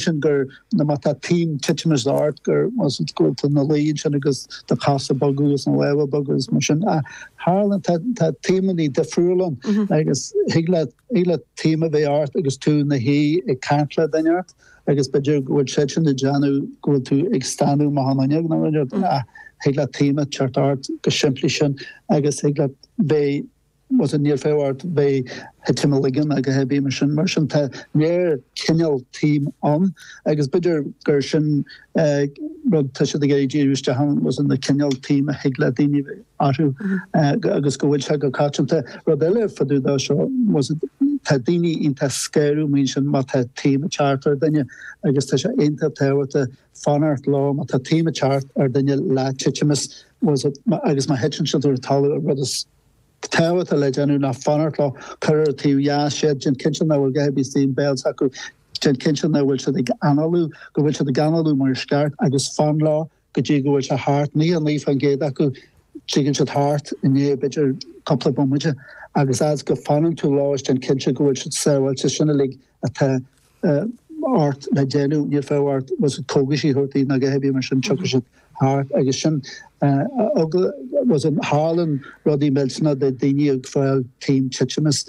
sin gur nuair má tá taom titimeas ort gur go bhfuil tú ina luí ansin agus do chosa ag bogadh agus na lámha ag bogadh agus mar sin ach tharla tá tá taomannaí difriúil ann agus thig leat thig leat taom a bheith ort agus tú ina shuí ag caint le duine inteacht agus b'fhéidir go bhfuil sé sin ag déanamh go bhfuil tú ag stánadh amach an fhuinneog nó inniu ach thig leat taom a teacht ort chomh simplí sin agus thig leat bheith Bhfuil fhios agat níl fiacha ort bheith a' titim uilig ná a dhath ar bith mar sin. Mar sin tá lear cineál taom ann agus b'fhéidir gur sin a' rud tá siad ag iarraidh díriú isteach ann bhfuil fhios agat na cineál taom a thig le daoine a bheith orthu agus go bhfuil sé go coitianta. Rud eile fá dtaobh dó seo bhfuil fhios agat tá daoine iontach scanrúil mar sin má tá taom a' teacht ar duine agus tá sé iontach tábhachtach fanacht leo má tá taom a' teacht ar duine le titimeas bhfuil fhios agat agus má thiteann siad ar a' talamh a' rud is tábhachtaí atá le déanamh ná fanacht leo, cuir ar a taobh dheas iad, déan cinnte nach bhfuil a dhath ar bith istigh ina béal s'acu, déan cinnte nach bhfuil siad ag análú, go bhfuil siad ag análú mar is ceart agus fan leo go dtí go bhfuil sé thart, nócha a naoi fán gcéad acu tigeann siad thart i ndiaidh b'fhéidir cúpla bomaite agus fhad 's go fanann tú leo is déan cinnte go bhfuil siad sábháilte, sin uilig atá. ort le déanamh, níl fiacha ort, bhfuil fhios agat, cógaisí a thabhairt di, ná a dhath ar bith mar sin, tiocfaidh siad thart agus sin eagla, bhfuil fhios agat tharlann rudaí millteanach do daoine ag fáil taom titimis,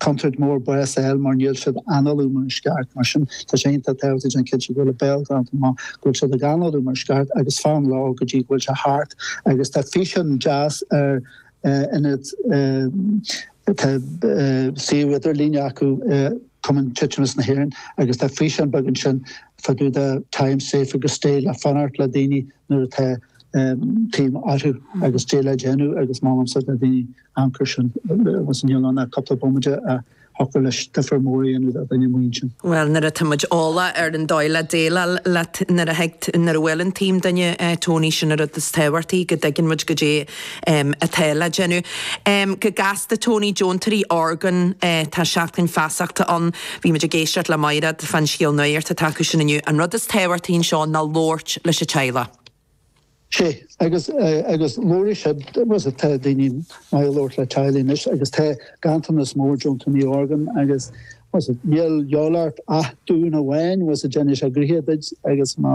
contúirt mór bás a fháil mar níl siad ag análú mar is ceart mar sin tá sé iontach tábhachtach déanamh cinnte go bhfuil a béal glanta mar go bhfuil siad ag análú mar is ceart agus fan leo go dtí go bhfuil sé thart agus tá físeán deas ar an net tá suíomh idirlíne acu Cumann Titimeas na hÉireann, agus tá físeán beag ansin fá dtaobh de Time Safe agus Stay le fanacht le daoine nuair atá taom orthu agus goidé le déanamh agus molaimse le daoine amharc ar sin agus níl ann ach cúpla bomaite agus thiocfadh leis difir mór a dhéanamh do dhuine mar sin. Bhuel, nuair atá muid eolach ar an dóigh le déileáil leis nuair a bhuaileann taom duine Tony sin a rud is tábhachtaí go dtuigeann muid goidé um, atá le déanamh. Um, go gasta, Tony, deontóirí orgán, eh, tá Seachtain Feasachta ann, bhí muid ag éisteacht le Maighréad fán scéal nuaíocht atá acu sin inniu, an rud is tábhachtaí anseo ná labhairt leis an teaghlach. Sé, agus, eh, agus labhair siad, bhfuil fhios agat, tá daoine maith ag labhairt le teaghlaigh anois agus tá ganntanas mór deontóirí orgán agus, bhfuil fhios agat, níl a dhíobháil ort ach duán amháin, bhfuil fhios agat, déanfaidh sé gnoithe duid agus má,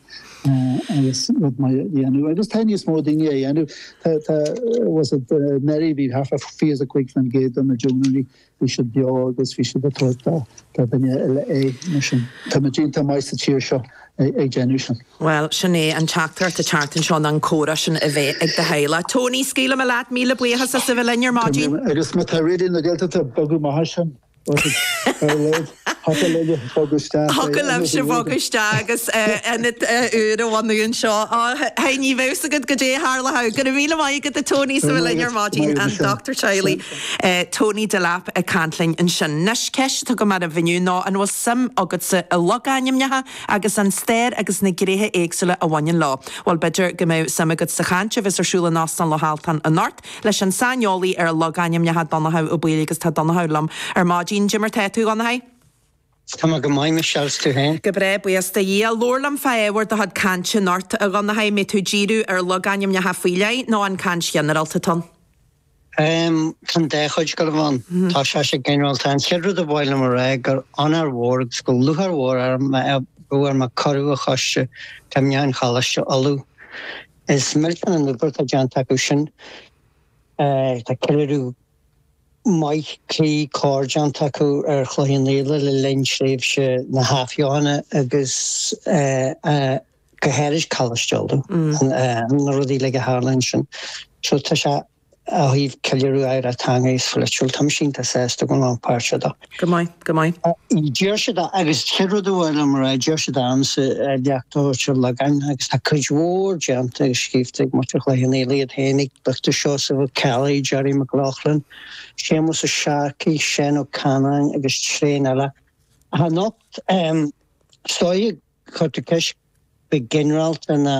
agus rud maith a dhéanamh agus tá níos mó daoine á dhéanamh. Tá tá bhfuil fhios agat anuraidh bhí thart fá fiche is a cúig faoin gcéad de na deontóirí bhí siad beo agus bhí siad ag tabhairt dá dá duine eile é mar sin tá muid iontach maith sa tír seo ag déanamh sin. Bhuel sin é an teachtaireacht atá an tseachtain seo ná an comhrá sin a bheith ag do theaghlach. Tony scaoilfidh mé leat míle buíochas as a bheith linn ar maidin. Agus má tá Raidió na Gaeltachta ag bogadh amach as sin. Thiocfadh libhse bogadh isteach agus ionad úr a bhunú anseo. Hey, ní bheadh 's agat caidé a tharlódh. Go raibh míle maith agat, a Tony, as a bheith linn ar maidin. An dochtúir teaghlaigh Tony Delap ag caint linn ansin. 'Nois, ceist atá agam daoibh inniu ná an bhfuil suim agatsa i logainmneacha agus an stair agus na gnéithe éagsúla a bhaineann leo? Bhuel, b'fhéidir go mbeadh suim agat sa chaint a bheas ar siúl in Óstán Loch Altan anocht. leis an saineolaí ar logainmneacha Donnchadh Ó Baoill agus tá Donnchadh liom ar maidin. Dé mar tá tú, a Dhonnchaidh? Tá mé go maith a Michelle 's tú féin. Go breá, buíochas do Dhia. Labhair liom fá ábhar do chuid cainte anocht, a Dhonnchaidh, an mbeidh tú ag díriú ar logainmneacha faoi leith nó an caint ghinearálta atá ann? Ehm, tá an dá chuid ag gabháil a bheith ann. Tá sé sé ginearálta. An chéad rud a ba mhaith liom a rá gur onóir mhór agus gur lúcháir mhór orm a bheith ar mo chuireadh ag Coiste Cuimhneacháin Choláiste Uladh. Is millteanach an obair atá déanta acu sin. Tá ceiliúradh maith cuí cóir déanta acu ar Chloich Cheann Fhaola le linn thréimhse na hathbheochana agus go háirid Coláiste Uladh, na rudaí uilig a tharla ansin. So tá sé. Ó thaobh ceiliúradh oidhreacht teanga is pholaitiúil, tá mise iontach sásta a bheith páirteach ann. Go maith, go maith. Deir siad, agus an chéad rud a ba mhaith liom a rá, deir siad annso a leachtó siad logáin agus tá cuid mhór déanta agus scríobhta ag muintir Chloich Cheann Fhaola iad féin ag Dochtúir Seosamh Ó Ceallaigh, Gerry Mac Lochlainn, Séamus Ó Searcaigh, Seán Ó Canainn agus tréan eile. Ach anocht, is dóiche, cuirtear ceist go ginearálta ar na.